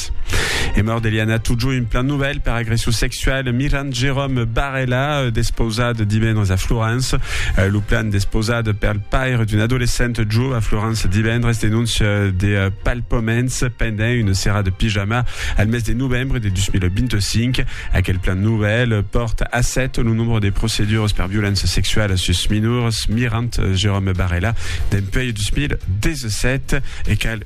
Cat. E mòrt d'Eliana Tudjo, un plan novèl per agression sexual, Miran Jérôme Barella, euh, despausat divendres a Florence. Euh, lo plan despausat per le paire d'un adolescent jo a Florence divendres denonce euh, de euh, palpaments pendent une serra de pyjama al mes de novembre de 2025. Aquel plan nouvel porte a 7 le nombre de procédures per violence sexuelle sus minors, mirant Jérôme Barella d'un peu 2017 et qu'elle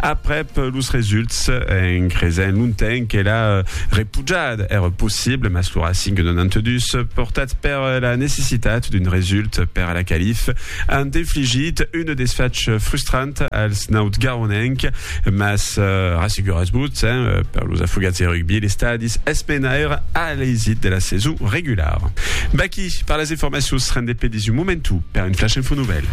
Aprèp los results, en cresent longtemps que la repujada èra possible, mas lo Racing de 92, portat per la necessitat d'un result per a la calif, an infligit un desfach frustrant als nautgaronenc, mas rasseguratz-vos, per los afogats de rugbi, l'estadi es mena èra a l'eisit de la saison regulara. Baquí per las informacions, rendez-pe dins un momentu per un flash info nouvèl.